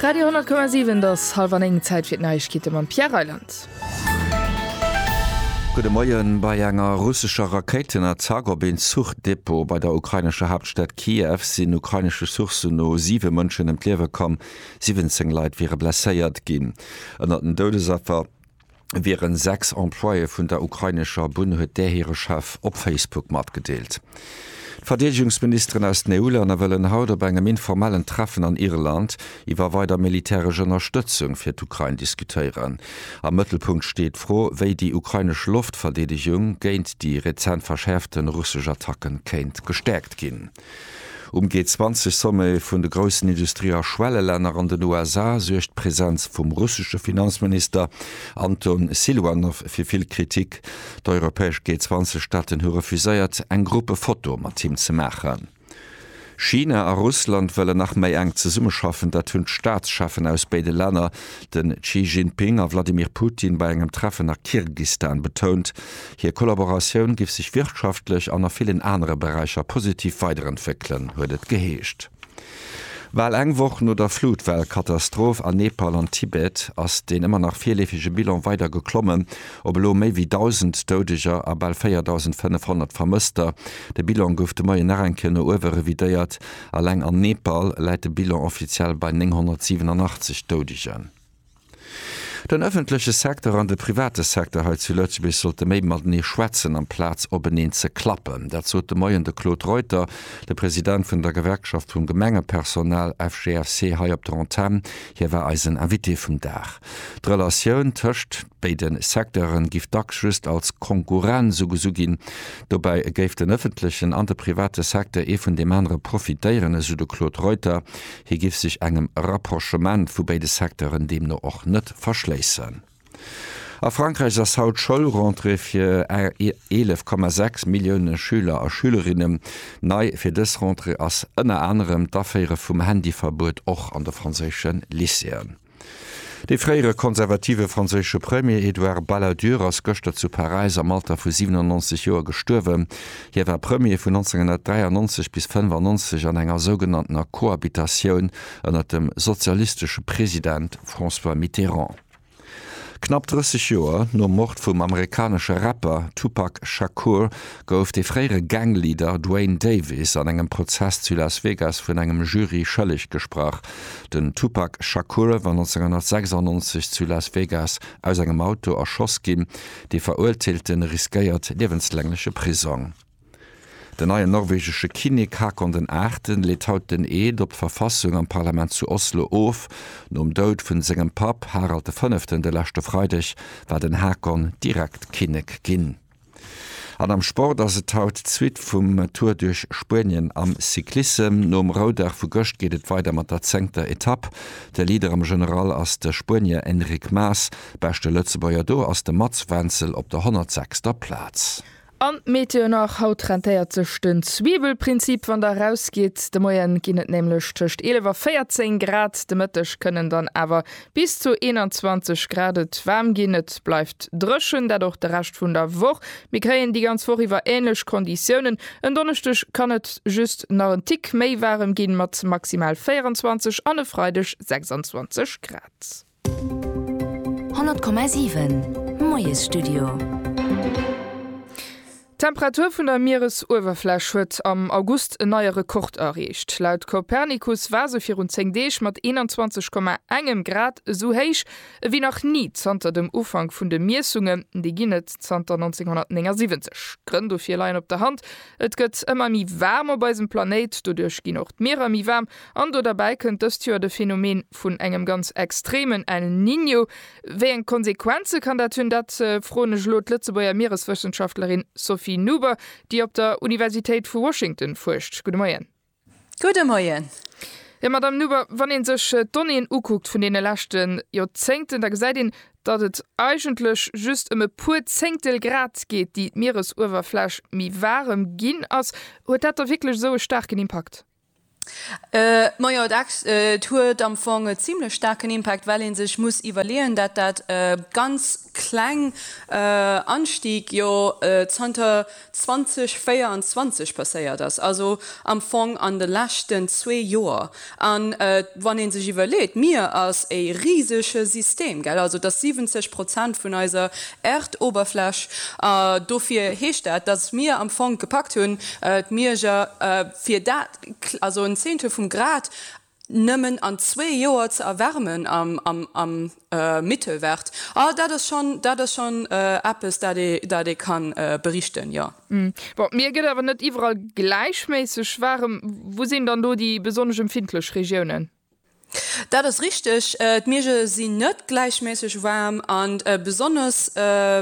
Radio 10,7 Et ass hallwer 9, Zäit fir d'Neiegkeete mam Pierre Reyland. Gudde Moien. Bei enger russescher Rakéitenattack op een Zuchdepot bei der ukrainescher Haaptstad Kiew sinn ukrainesche Sourcen no siwe Mënschen ëm d'Liewe komm, 17 Leit wiere blesséiert ginn. Ënnert den Doudesaffer wieren sechs Employéë vun der ukrainescher Bunn, huet där hire Chef op Facebook matgedeelt. D'Verdeedegungsministeren aus den EU-Länner wëllen haut op engem informellen Treffen an Irland iwwer weider militäresch Ënnerstëtzung fir d'Ukrain diskutéieren. Am Mëttelpunkt steet d'Fro, wéi déi ukrainesch Loftverdeedegung géint déi rezent verschäerfte russesch Attacke kéint gestäerkt ginn. Um G20-Sommet vun de groussen Industrie a Schwellelänner an den USA suergt d'Presenz vum russesche Finanzminister Anton Siluanow fir vill Kritik. D'europäesch G20-Staaten hu refuséiert, eng Gruppefoto mat him ze maachen. China a Russland wëllen nach méi enk zesummeschaffen. Dat hunn d'Staatscheffen aus béide Länner, de Xi Jinping a Wladimir Putin, bei engem Treffen a Kirgistan betount. Hir Kollaboratioun giff sech wirtschaftlech an a villen anere Beräicher positiv weiderentwéckelen, huet et geheescht. Bal eng Woch no der Flutwell-Katastroph an Nepal an Tibet ass deen ëmmer nach virleefege Bilan weider geklommen op elo méi wéi 1.000 Doudeger a bal 4.500 Vermësster. De Bilan gouf de Moien nach eng Kéier no uewe revidéiert. Eleng an Nepal läit de Bilan offiziell bei 987 Doudegen. Den ëffentleche Secteur an de private Secteur hei zu Lëtzebuerg sollte méi matenee schwätzen amplaz openeen ze klappen. Dat sot de Moien de Claude Reuter, de President vun der Gewerkschaft vum Gemengepersonal, FGFC, hei op der Antenn. Hie war eisen Invité vum Dag. D'Relatioun tëscht béide Secteure giff dacks just als Konkurrenz ugesu ginn. Dobäi géif den ëffentlechen an de private Secteur ee vun deem anere profitéieren, esou de Claude Reuter. Hie géif sech engem Rapprochement vu béide Secteuren deemno och net verschléissen. A Frankräich ass haut d'Schoulrentrée fir 11,6 Millioune Schüler a Schülerinnen. Nei fir dës Rentrée ass ënner anerem d'Aféiere vum Handyverbuet och an de franséische Lycéeën. De fréiere konservative franséische Premier Edouard Balladur ass gëschter zu Paräis am Alter vu 97 Joer gestuerwen. Hie war Premier vun 1993 bis 95 an enger sougenanntener Cohabitatioun ënner dem sozialistesche President François Mitterrand. Knapp 30 Joer nom Mord vum amerikanesche Rapper Tupac Shakur gouf de fréiere Gang-Leader Duane Davis an engem Prozess zu Las Vegas vun engem Jury schëlleg gesprach. Den Tupac Shakur war 1996 zu Las Vegas aus engem Auto erschoss ginn. De Verurteelte riskéiert liewenslängleche Prisong. Den neien norwegesche Kinnek Haakon den Aachten leet haut den Eed op d'Verfassung am Parlament zu Oslo of. Nom Doud vun sengem Papp Harald de Fënneften de leschte Freideg war den Haakon direkt Kinnek ginn. An am Sport ass et haut d'Suite vum Tour duerch Spuenien am Cyclissem. Nom Roudag vu gëscht geet et weider mat der zéngter Etapp. De Leader am General ass de Spuenier Enric Mas. Beschte Lëtzebuerger do ass de Mats Wenzel op der 106. Plaz. An d'Meteo nach, Haut rentéiert sech den Zwiebelprinzip wann der erausgitt. De Moien ginn et nämlech tëscht 11 a 14 Grad. De Mëtteg kënnen dann awer Bis zu 21 Grad. Et waarm ginn, et bleift dréchen, dat och de Rescht vun der Woch. Mir kréien déi ganz Woch iwwer änlech Konditiounen. En Donneschdeg kann et just nach en Tick méi waarem ginn, mat maximal 24 an e Freideg 26 Grad. 100,7 Moiesstudio. D'Temperatur vun der Mieresuewerfläch huet am August en neie Rekord erreecht. Laut Copernicus war se virun 10 Deeg mat 21,1 Grad esou héich ewéi nach ni zanter dem Ufank vun de Miessungen, déi ginn et zanter 1979. D'Grënn dofir leien op der Hand, Et gëtt ëmmer méi waarm op eisem Planéit, doduerch ginn och d'Mierer méi waarm an do derbäi kënnt dëst Joer de Phänomen vun engem ganz extremen El Niño, Wéi eng Konsequenze kann dat hunn? Dat froen ech elo d'Lëtzebuerger Miereswëssenschaftlerin Sophie Nuber, déi op der Universitéit vu Washington fuerscht. Gudde Moien. Gudde Moien. Jo, Madamm Nuber, wann ee sech d'Donnéeën ukuckt vun deene leschte Joerzéngten, da gesäit een, datt et eigentlech just ëm e puer Zéngtel Grad geet, déi d'Mieresuewerfläch méi waarem ginn ass. Huet dat da wierklech esou e staarken Impakt? Majo, et huet am Fong e zimlech staarken Impact, well ee sech muss iwwerleeën, dat dat ganz kleng Anstieg jo zanter 2024 passéiert ass, also am Fong an de leschten zwee Joer. A wann ee sech iwwerleet, d'Mier ass e risege System, gell, also et ass 70 Prozent vun eiser Äerdoberfläch, dofir heescht dat, datt mir am Fong gepackt hunn, d'Mierger Fir dat, also en Zehntel vum Grad nëmmen an zwee Joer ze erwärmen am Mittelwert, ah dat ass schonn, dat ass schonn eppes, dat ee, dat ee ka berichten, jo. Bon, d'Mier gëtt awer net iwwerall gläichméisseg waarem. Wou sinn dann do déi besonnesch empfindlech Regiounen? Dat ass richteg, d'Miege sinn net gläichméisseg waarm an besonnesch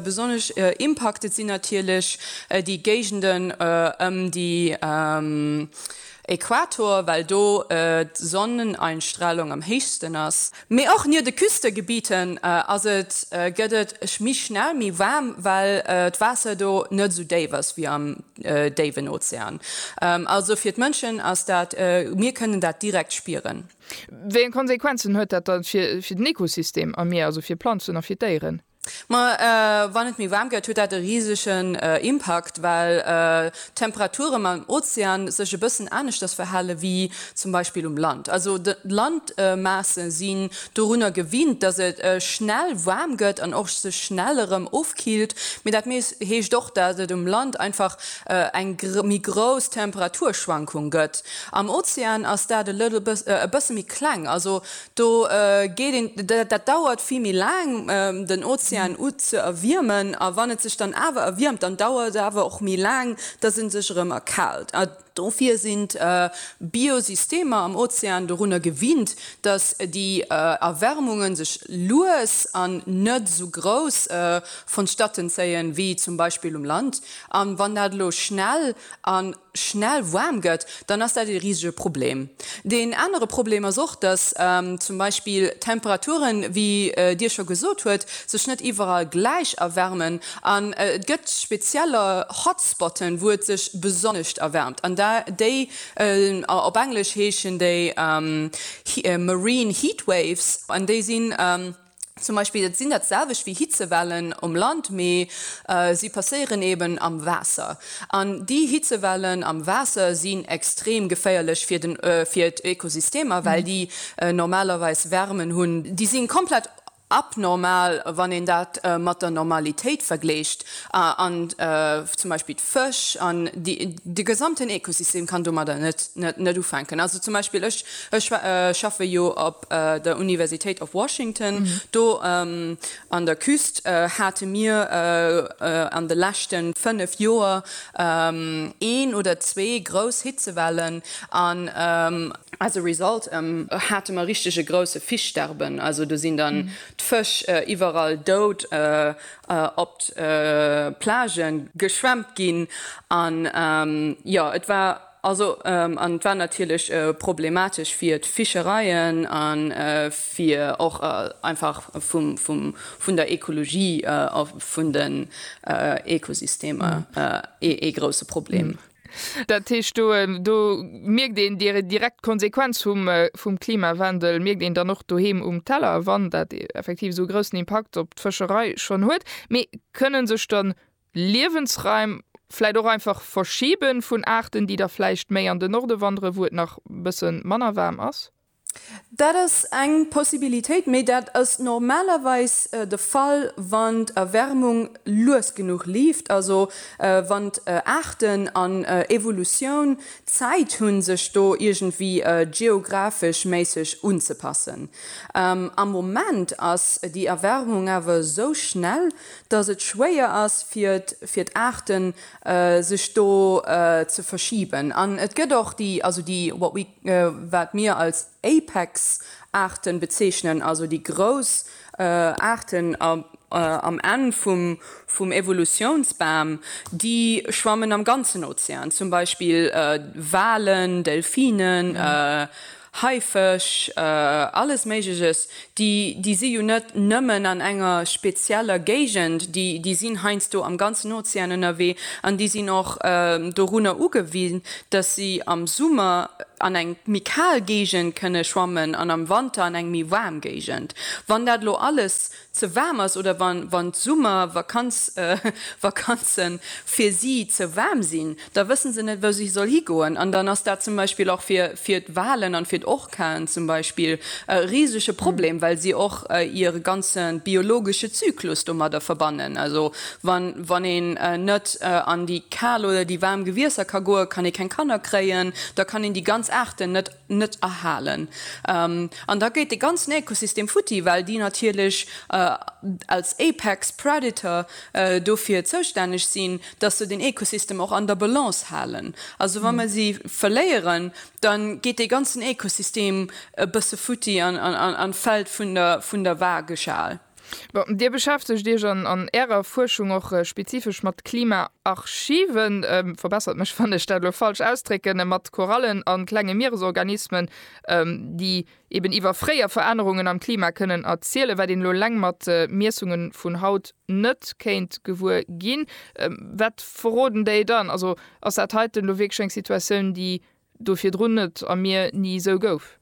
besonnesch impacted sinn natierlech déi Géigenden ëm déi Equator, well do d'Sonneneinstrahlung am héichsten ass. Mee och nier de Küstegebieten ass et gëtt et méi schnell méi waarm, well d'Waasser do net esou déif ass wéi am déiwen Ozean. Also fir d'Mënschen ass dat, mir kënnen dat direkt spieren. Wéi eng Konsequenzen huet dat da fir den Ekosystem am Mier, also fir d'Planzen a fir d'Déieren? Ma wann et méi waarm gëtt, huet dat e risegen Impakt, well d'Temperaturem am Ozean sech e bëssen aneschters verhale wéi zum Beispill um Land. Also d'Landmaasse si dorunner gewinnt, dass et schnell waarm gëtt an och sech schnell erëm ofkillt, mee dat heescht och, dass et um Land einfach eng méi grouss Temperaturschwankung gëtt. Am Ozean ass dat e bësse méi kleng, also do geet een, dat dauert vill méi laang den Ozean ze erwiermen a wann et sech dann awer erwiermt, dann dauert et awer och méi laang, dass e sech erëm erkaalt. Dofir sinn d'Biosystemer am Ozean dorunner gewinnt, datt déi Erwärmunge sech lues an net esou grouss vonstatten zéien, wéi zum Beispill um Land. A wann dat elo schnell a schnell waarm gëtt, dann ass dat ee risege Problem. Deen anere Problem ass och, datt zum Beispill d'Temperaturen, wéi Dir scho gesot huet, sech net iwwerall gläich erwärmen. An et gëtt spezieller Hotspotten, wou et sech besonnescht erwärmt. An déi, op Englesch heeschen déi Marine Heat Waves. An déi sinn zum Beispill, et sinn dat selwecht wéi Hitzewellen um Land, mee si passéieren eeben am Waasser. An déi Hitzewellen am Waasser sinn extrem geféierlech fir d'Ökosystemer, well déi normalerweis Wärmen hunn. Déi si komplett abnormal, wann een dat mat der Normalitéit vergléicht, an zum Beispill d'Fësch an de gesamten Ekosystem kann domadder net ufänken. Also zum Beispill ech schaffe jo op der Universitéit of Washington, do an der Küst hate mir an de leschte fënnef Joer een oder zwee grouss Hitzewellen, an As a result hate mer richteg e grousse Fischsterben, also do sinn dann d'Fësch iwwerall dout op d'Plage geschwemmt ginn. An jo, et war also an et war natierlech problematesch fir d'Fischereien a fir och einfach vun der Ekologie a vun den Ekosystemer ee grousse Problem. Dat heescht, do, do mierkt een déi direkt Konsequenz vum, vum Klimawandel mierkt een dann och doheem um Teller, wann dat effektiv esou e groussen Impakt op d'Fëscherei schonn huet. Mee kënne sech dann Liewensraim vläicht och einfach verschibe vun Aarten, déi da vläicht méi an den Norde wanderen, wou et nach e bësse manner waarm ass? Dat ass eng Possibilitéit, mee dat ass normalerweis de Fall, wann d'Erwärmung lues genuch leeft, also wann Aarten an Evolutioun Zäit hunn, sech do iergendwéi geographeschméisseg unzepassen. Am Moment ass déi Erwärmung awer esou schnell, dass et schwéier ass fir d'Aarten, sech do ze verschiben. An et gëtt och déi, also déi, what we. wat mir als Apex-Aarten bezeechnen, also déi grouss Aarten am Enn vum Evolutiounsbam, déi schwammen am ganzen Ozean, zum Beispill Walen, Delfinen, Haifësch, alles Méigleches, Déi, déi si jo net nëmmen an enger spezieller Géigend, déi, déi sinn heiansdo am ganzen Ozean ënnerwee an déi sinn och dorunner ugewisen, dass si am Summer an eng méi kal Géigend kënne schwammen an am Wanter an eng méi waarm Géigend. Wann dat elo alles ze waarm ass oder wann, wann d'Summervakanz, Vakanze fir si ze waarm sinn, da wëssen se net, wou si soll higoen an dann ass dat zum Beispill och fir, fir d'Walen an fir d'Orcaen zum Beispill e risege Problem, well si och hire ganze biologesche Zyklus domadder verbannen. Also wann, wann een net an déi kal oder déi waarm Gewiesser ka goen, kann ee keng Kanner kréien, da kann een déi ganz Aarten net. net erhalen. An da gétt dee ganzen Ökosystem futti, well déi natierlech als apex predator dofir zoustänneg sinn, dass se den Ökosystem och an der Balance halen. Also wa mer si verléieren, da geet dee ganzen Ökosystem e bësse futti an fält vun der Waageschal. Bon, Dir beschäftegt Iech an Ärer Fuerschung och spezifesch mat Klimaarchiven, verbessert mech, wann ech dat elo falsch ausdrécken, mat Korallen a klenge Mieresorganismen, déi eben iwwer fréier Verännerungen am Klima kënnen erzielen, wat een elo eleng mat Miessunge vun haut net kéint gewuer ginn. Wat verroden déi dann? Also ass dat heiten elo wierklech eng Situatioun, déi Do virdrun net a mir ni esou gouf.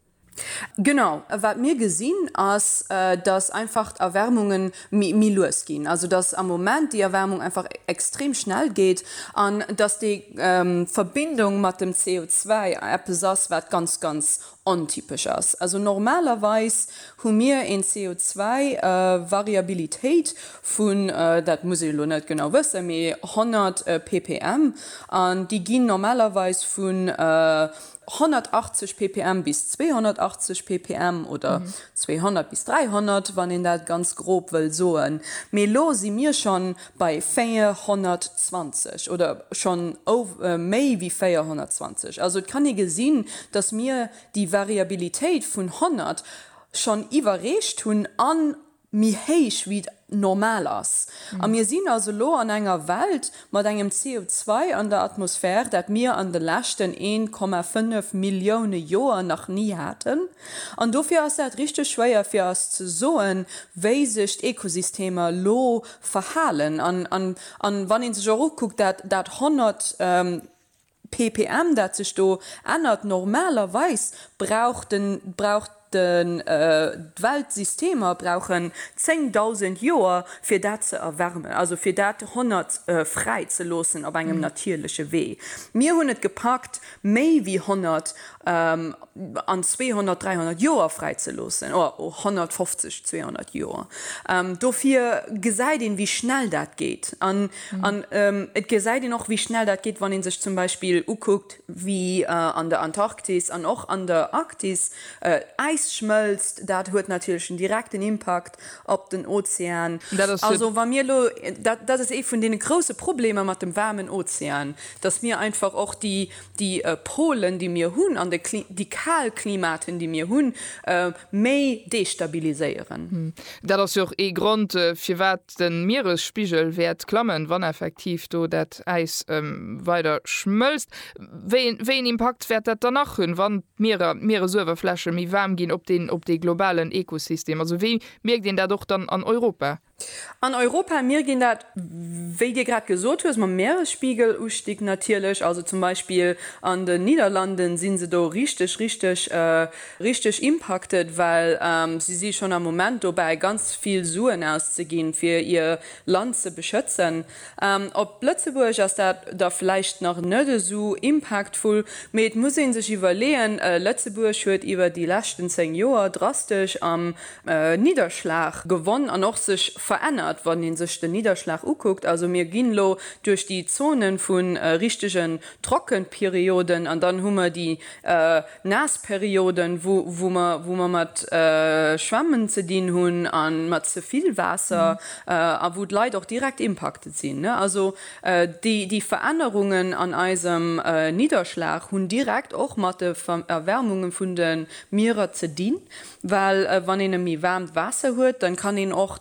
Genau. A wat mir gesinn, ass, dass einfach d'Erwärmunge méi lues ginn, also dass am Moment déi Erwärmung einfach extrem schnell geet an dass déi Verbindung mat dem CO2 eppes ass, wat ganz, ganz ontypesch ass. Also normalerweis hu mir eng CO2-Variabilitéit vun, dat muss ee lo net genau wëssen, mee 100 ppm, an déi ginn normalerweis vu 180 ppm bis 280 ppm oder 200 bis 300, wann een dat ganz grob wëll soen. Mee lo si mir schonn bei 420 oder schonn méi ewéi 420. Also et kann ee gesinn, datt mir déi Variabilitéit vun 100 schonn iwwerreecht hunn an méi héich wéi normal ass. A mir sinn also elo an enger Welt mat engem CO2 an der Atmosphär, dat mir an de leschten 1,5 Millioune Joer nach ni haten. An dofir ass dat richteg schwéier fir eis ze soen, wéi sech d'Ekosystemer elo verhalen. An wann ee sech och ukuckt, dat 100. Ppm, dat sech do ännert. Normalerweis brauch den, brauch den, d'Welt, Systemer brauchen 10.000 Joer fir dat ze erwärmen, also fir dat 100 fräi ze loossen op engem natierleche Wee. Mir hunn et gepackt méi wéi 100 an 200, 300 Joer fräi ze loossen, o 150, 200 Joer. Dofir gesäit een, wéi schnell dat geet. An An et gesäit een och, wéi schnell dat geet, wann ee sech zum Beispill ukuckt, wéi an der Antarktis an och an der Arktis d'Äis schmëlzt. Dat huet natierlech en direkten Impakt op den Ozean. Also wa mir elo, dat ass ee vun deene grouse Problemer mat dem waarmen Ozean, datt mir einfach och déi Polen, déi mir hunn, an déi kal Klimaten, déi mir hunn, méi destabiliséieren. Dat ass jo och ee Grond, firwat De Mieresspigel wäert klammen, wann effektiv do dat Äis weider schmëlzt. Wéi een Impakt wäert dat dann nach hunn, wann d'Mierer, d'Mieresuewerfläche méi waarm ginn, op deen, op dee globalen Ekosystem? Also wéi mierkt een dat och dann an Europa? An Europa mierkt een dat, wéi Dir grad gesot hues, mam Mieresspigelustig natierlech. Also zum Beispill an den Niederlanden si se do richteg, richteg richteg impacted, well si si schonn am Moment dobäi ganz vill Suen auszeginn, fir hir Land ze beschëtzen. Op Lëtzebuerg ass dat da vläicht nach net esou impactful, mee et muss ee sech iwwerleeën, Lëtzebuerg huet iwwer déi leschten 10 Joer drastesch am Nidderschlag gewonn an och sech verännert, wann ee sech den Nidderschlag ukuckt. Also mir ginn elo duerch déi Zone vu richtegen Trockenperioden an dann hu mer déi naass Perioden, wou mer mat Schwämmen ze dinn hunn a mat ze vill Waasser a wou d'Leit och direkt impacted sinn. Also déi Verännerungen an eisem Nidderschlag hunn direkt och mat de Erwärmunge vun de Mierer ze dinn, well wann een e méi waarmt Waasser huet, da kann een och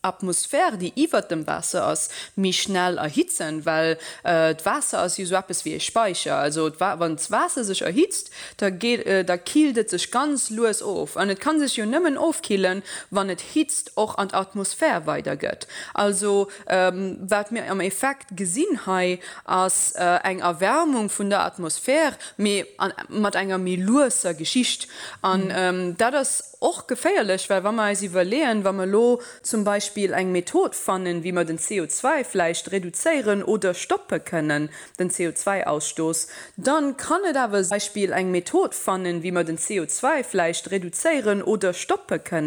Atmosphär, déi iwwert dem Waasser ass, méi schnell erhitzen, well d'Waasser ass jo esou eppes wéi e Speicher. Also wann d'Waasser sech erhitzt, da killt et sech ganz lues of. An et ka sech jo nëmmen ofkillen, wann et Hitzt och an d'Atmosphär weidergëtt. Also wat mir am Effekt gesinn hei, ass eng Erwärmung vun der Atmosphär, mee mat enger méi lueser Geschicht. An dat ass Och geféierlech, well wa mer eis iwwerleeën, wa mer elo zum Beispill eng Method fannen, wéi mer den CO2 vläicht reduzéieren oder stoppe kënnen, den CO2-Ausstoß, da kann et awer zum Beispill eng Method fannen, wéi mer den CO2 vläicht reduzéieren oder stoppe kënnen.